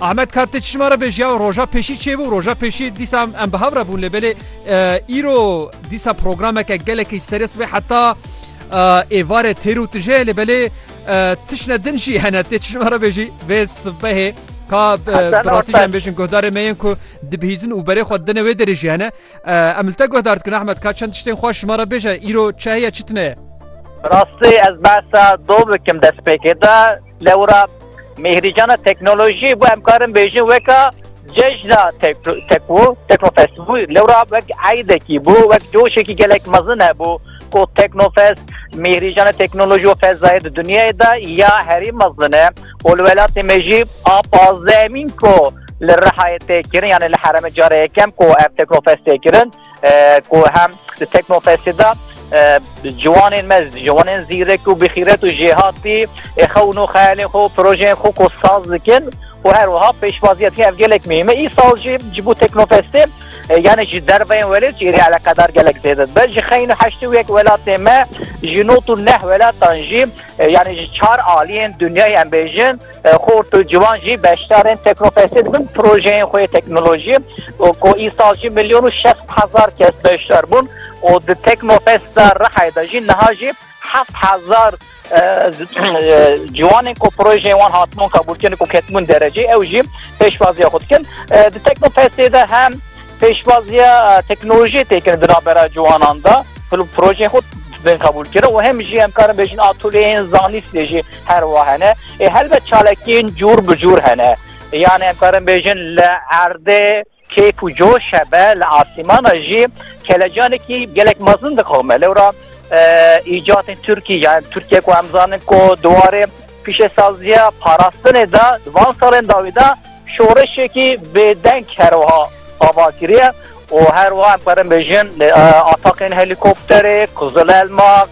Ahmet Kat tê çişma re vê jiya roja pêşî çêbû roja pêşî dîsa em bi hev re bûn lê belê îro dîsa programeke gelekî serê sibê heta êvarê têr û tije lê belê tişne din jî hene tê çişma re vêjî vê sibehê ka birastî em bêjin guhdarê me yên ku dibihîzin û berê xwe dine wê derê jî hene em li te guhdar dikin Ahmet Kat çend tiştên xwe şima re bêje îro çi heye çi tune ye Rastê ez behsa dom bikim destpêkê de Lewra Mêhrîcana teknolojî bû em karin bêjin weka cejna tekwo teknofest bû lewra wek eydekî bû wek coşekî gelek mezin hebû ku teknofest mêhrîjana teknolojî û fezayê di dunyayê de ya herî mezin e û li welatê me jî a pazdehemîn ku li Rihayê tê kirin yanê li heremê carê yekem ku ev teknofest tê kirin ku hem di Teknofestê de ciwanên me ciwanên zîrek û bixîret û jêhatî ê xew û nû xeyalên xwe û projeyên xwe ku saz dikin û her wiha pêşwaziya tê ev gelek mihîm e. Îsal jî ji bo Teknofestê yani ji derveyên welêt jî êrî eleqedar gelek zêde dibe. Ji xeyn û heştê û yek welatê me ji not û neh welatan jî yani ji çar aliyên dinyayê em bêjin Xort û ciwan jî beşdarên Teknofestê dibin, projeyên xwe yê teknolojiyê û ku îsal jî milyon û şeş sed hezar kes beşdar bûn û di Teknofesta Rihayê de jî niha jî heft hezar ciwanên ku projeyên wan hatibûn qebûlkirin û ketibûn dereceyê ew jî pêşwaziya xwe dikin. Di Teknofestê de hem Pêşwaziya teknolojiyê tê kirin di navbera ciwanan de. Projeyên xwe bên qebûl kirin û hem jî em karin bêjin atûlyeyên zanîstê jî her wiha hene. Ê helbet çalakiyên cûr bi cûr hene. Yanê em karin bêjin li erdê kêf û coş hebe, li asîmana jî kelecanekî gelek mezin dixeme. Lewra îcatên Tirkî yan Tirkiye ku em zanin ku di warê Pîşesaziya parastinê de di van salên dawî de şoreşekî bêdeng her wiha ava kiriye û her wiha em karin bêjin ataqên helîkopterê, qizilelmak,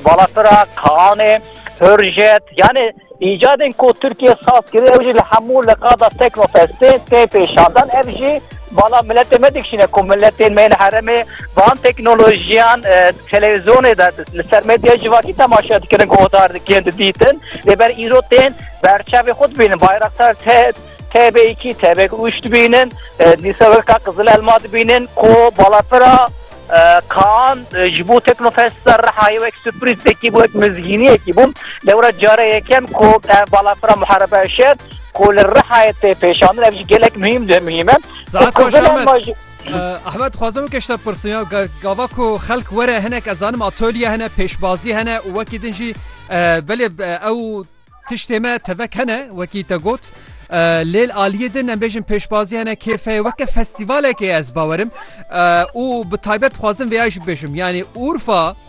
balafirak, kaanê, hurjet yanî îcadên ku Tirkiye saz kiriye ew jî li hemû liqada Teknofestê tê pêşandan. Ev jî bala miletê me dikişîne ku miletên me yên herêmê van teknolojiyan, Televîzyonê de li ser medyaya civakî temaşe dikirin ku otar dikin didîtin lê ber îro tên berçavê xwe dibînin Bayraktar TB2 TB3 dibînin dîsa weka Qizil Elma dibînin ku balafira Kaan ji bo Teknofest'da rihayê wek sürprizekî bû wek mizgîniyekî bû lê wira cara yekem ku ev balafira Muharebe Eşer ku li rihayê tê pêşandin ev jî gelek muhîm de muhîm e. Saet baş Ahmet. Ahmet dixwazim weke ji te bipirsim ya gava ku xelk were hinek ez zanim atölye hene pêşbazî hene û wekî din jî belê ew tiştê me tevek hene wekî te got lêl aliyê din em bêjin pêşbazî hene kêfe weke festîvalekê ez bawerim û bi taybet dixwazim vêya jî bêjim yanî Urfa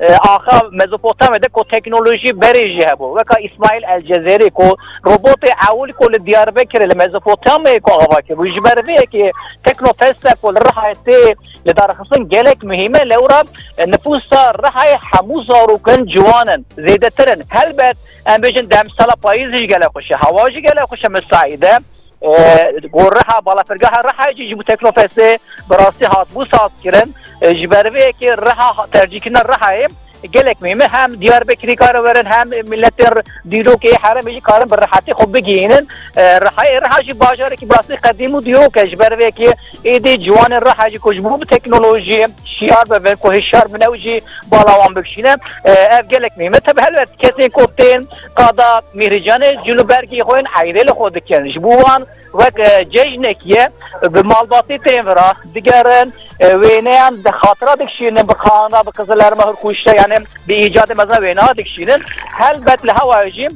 Axa Mezopotamê de ku teknolojî berê jî hebû. Weka İsmail El Cezerî ku robotê ewil ku li Diyarbekirê li Mezopotamyayê ku ava kiribû. Ji ber vê yekê teknofesta ku li Rihayê tê li darxistin gelek muhîm e. Lewra nifûsa Rihayê hemû zarokin ciwan in, zêdetir in. Helbet em bêjin demsala payîzê jî gelek xweş e. Hewa jî gelek xweş e misaîd e. Gor Reha balafirgeha Rehayê jî ji bo Teknofestê bi rastî hatibû sazkirin. Ji ber vê yekê Reha tercîhkirina Rehayê gelek mêm e. Hem Diyarbekirî dikare werin hem miletên dîrokê yê herêmê jî karin bi rehetî xwe bigihînin Rehayê. Reha jî bajarekî bi rastî qedîm û dîrok e. Ji ber vê yekê êdî ciwanên Rehayê jî ku ji bo bi teknolojiyê şiyar bibin ku hişyar bin ew jî bala wan bikişîne. Ev gelek mêm e. Tevî helbet kesên ku tên Qada Mîhrîcanê cil û bergê xwe yên eyrê li xwe dikin. Ji bo wan wek cejnekî ye. Bi malbatê tên vir a digerin, wêneyan bi xatira dikişînin, bi xanra, bi qizilerma hûr kuşte yanê bi îcadê mezin wêneya dikişînin. Helbet li hewayê jî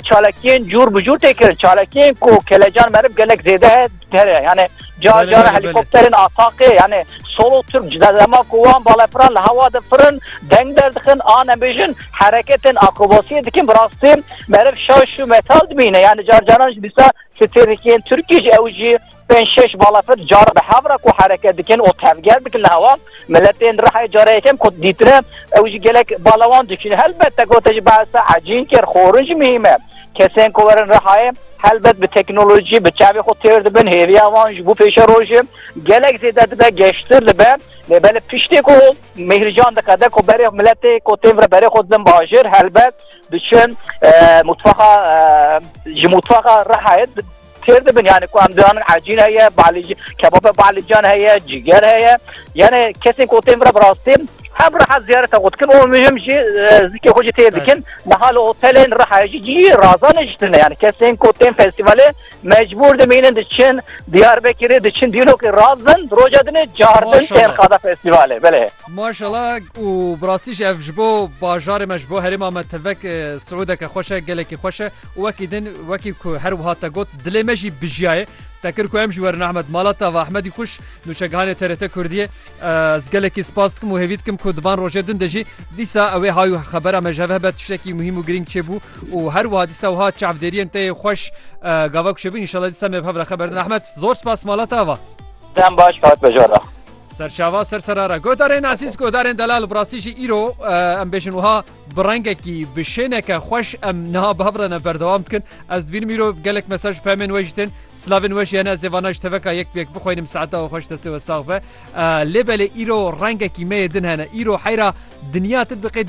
çalakiyên cûr bi cûr tê kirin. Çalakiyên ku kelecan meriv gelek zêde heye. Here yani car car helikopterin ataqê yani solo Türk cdema ku wan balefran li hewa de firin deng derdixin ane bêjin hereketên akrobasiyê dikin bi rastî meriv şaş û metal dibîne yani car caran ji dîsa stêrikiyên Türkî ji ew jî pênc şeş balefir car bi hevra ku hereket dikin û tevger dikin li hewa miletên rehê cara yekem ku dîtire ew jî gelek balawan diçîne helbet te gote ji behsa hecîn kir xorin jî mihîme Kesên ku werin Rihayê helbet bi teknolojî bi çavê xwe têr dibin, hêviya wan ji bo pêşerojê gelek zêde dibe, geştir dibe. Lê belê piştî ku Mîhrîcan diqede ku berê miletê ku tên vire berê xwe didin bajêr helbet diçin mutfaxa ji mutfaxa Rihayê Fêr dibin yani ku em dizanin ecîn heye, balîc, kebabê balîcan heye, cîger heye. Yani kesên ku tên vira bi rastî hem reha ziyareta xwe dikin û muhim jî zikê xwe jî tê dikin. Niha li otelên reha jî cî razan niştine yani kesên ku tên festîvalê mecbûr dimînin diçin Diyarbekirê diçin dîlokê razin roja dinê cardin tên Maşallah. qada festîvalê belê. Maşallah û bi rastî jî ev ji bo bajarê me ji bo herêma me tevek e, siûdeke xweş e, gelekî xweş e. Û wekî din, wekî ku her wiha te got, dilê me jî bijiyayê. Te kir ku em jî werin Ehmed mala te. Va Ehmedî Xwîş, nûçegihanê TRT Kurdiyê. Ez gelekî spas dikim û hêvî dikim ku di van rojê din de jî dîsa ewê hay û xebera me ji hev hebe tiştekî muhîm û girîng çêbû û her wiha dîsa wiha çavdêriyên te yê xweş gava ku çêbûn înşallah dîsa me bi hev re xeber din. Ehmed zor spas mala te ava. Dem baş kat be jor re. Serçava ser serara. Godarên ezîz, godarên delal bi rastî jî îro em bêjin wiha. Bi rengekî bi şêneke xweş em niha bav re ne berdewam dikin. Ez dibînim îro gelek mesaj pemên we jî tên. Silavên we jî hene ez ê vana ji teveka yek bi yek bixwînim saeta we xweş destê we sax be. Lê belê îro rengekî me yê din hene. Îro heyra dinya ti diqê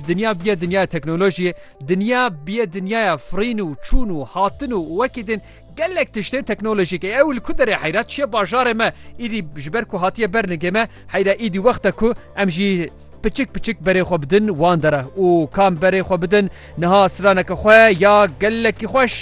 dinya biye dinyaya teknolojiyê. Dinya biye dinyaya firîn û çûn û hatin û wekî din gelek tiştên teknolojîk ê ew li ku derê heyra çiye bajarê me îdî ji ber ku hatiye ber nigê me heyra îdî wexta ku em jî Piçik piçik berê xwe bidin wan dere û kam berê xwe bidin niha straneke xwe ya gelekî xweş.